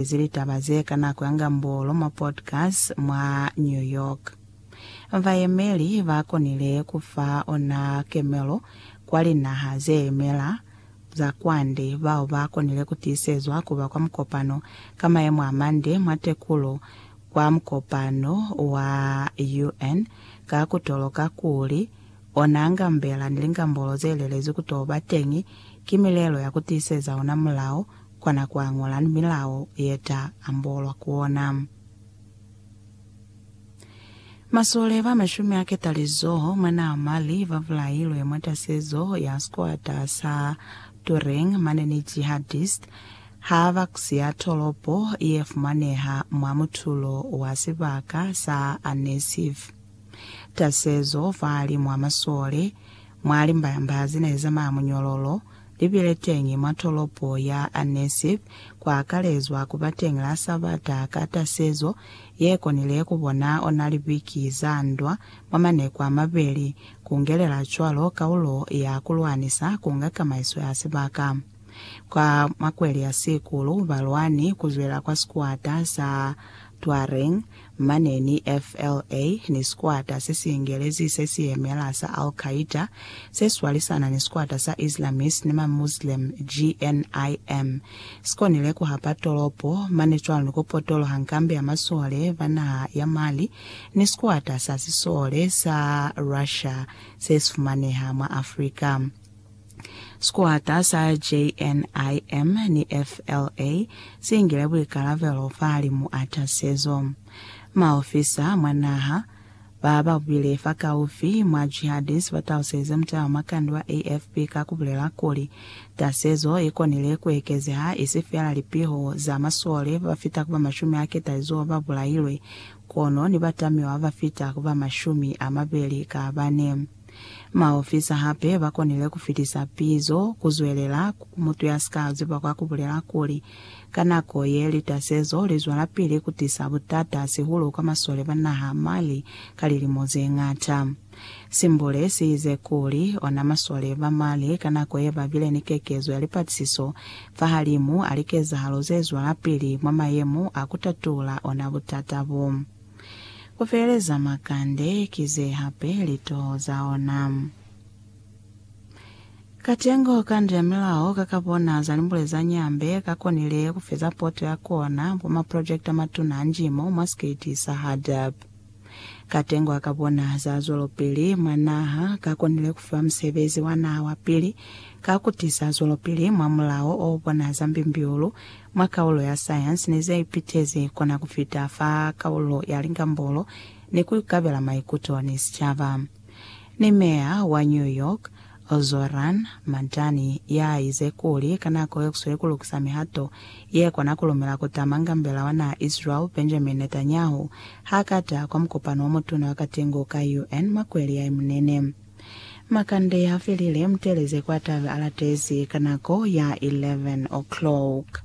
Ezi litaba ze ka nako ya Ngambolo mwa podcast mwa New York. Bayemeli ba konile ku fa ona kemelo kwa linaha ze yemela za kwande bao ba konile ku tiisezwa ku ba kwa mukopano ka mayemo a mande mwa tekulo kwa mukopano wa UN ka ku toloka kuli ona ngambela ni lingambolo ze lelezwi ku to ba teñi ki milelo ya ku tiiseza ona mulao kona ku añola ni milao ye ta ambolwa ku ona. Masole ba mashumi a ketalizoho mwa naha Mali ba bulailwe mwa tasezo ya sikwata sa Turing mane ni jihadist ha ba siya tolopo ye fumaneha mwa mutulo wa sibaka sa Annecyf. Tasezo fahalimw'a masole mwa limbayambaha ze ne zamaya munyololo li bile teñi mwa tolopo ya Annecy, kwa akalezwa ku ba teñi la Sabata ka tasezo ye konile ku bona ona libiki za ndwa mwa maneku a mabeli, ku ngelela cwalo kaulo ya ku lwanisa ku nga kamaiso ya sibaka. Kwa makweli a sikulu, balwani ku zwela kwa sikuata sa Tuareg, Mane ni FLA ni sikwata se si ingelezi se si yemela sa Al Qaeda se swalisana ni sikwata sa Islamist ni ma Muslim, GNIM, si konile ku hapa tolopo mane cwalo ni ku potoloha nkambi ya masole ba naha ya Mali ni sikwata sa sisole sa Russia se si fumaneha mwa Africa. Sikwata sa JNIM ni FLA si ngile buikalabelo fahalimu a tasezo. Maofisa mwa naha ba ba bile fakaufi mwa Jihadis ba taluselize mutala mwa kandi wa AFP ka ku bulela kuli, Tasezo i konile ku ekezeha isi feela lipiho za masole ba ba fita ku ba mashumi a ketalizoho ba bulailwe, kono ni batamiwa ba ba fita ku ba mashumi a mabeli ka bane. Maofisa hape ba konile ku fitisa pizo ku zwelela ku mutu ya si ka ziba ka ku bulela kuli, Ka nako ye, litasezo li zwelapili ku tisa butata hahulu kwa masole ba naha ya Mali ka lilimo ze ñata. Simbule si ize kuli, Ona masole ba Mali ka nako ye ba bile ni kekezo ya lipatisiso fahalimu a likezahalo ze zwelapili mwa mayemo a ku tatula ona butata bo. Ku feleza makande ki ze hape litoho za ona. Katengo ka ndu ya milao ka ka bona za limbule za Nyambe ka konile ku feza poto ya kona mwa maprojekiti a matuna a njimo mwa sikiti sa HADAP. Katengo a ka bona za zwelopili mwa naha ka konile ku fiwa musebezi wa naha wa pili ka ku tisa zwelopili mwa mulao o bona za mbimbiulu Mwa kaulo ya sayansi ne za ipitezi kona ku fita fa kaulo ya lingambolo ni ku ikabela maikuto ni sicaba. Ni Meya wa New York, Zohran Mamdani, ya ize kuli ka nako ye ku sweli ku lukisa mihato ye kona ku lumela ku tama ngambela wa naha Israel Benjamin Netanyahu ha ka ta kwa mukopano wa mutuna wa katengo ka UN mwa kweli ya Imunene. Makande ya felile, muteleze kwa tabe a latezi ka nako ya 11 o'clock.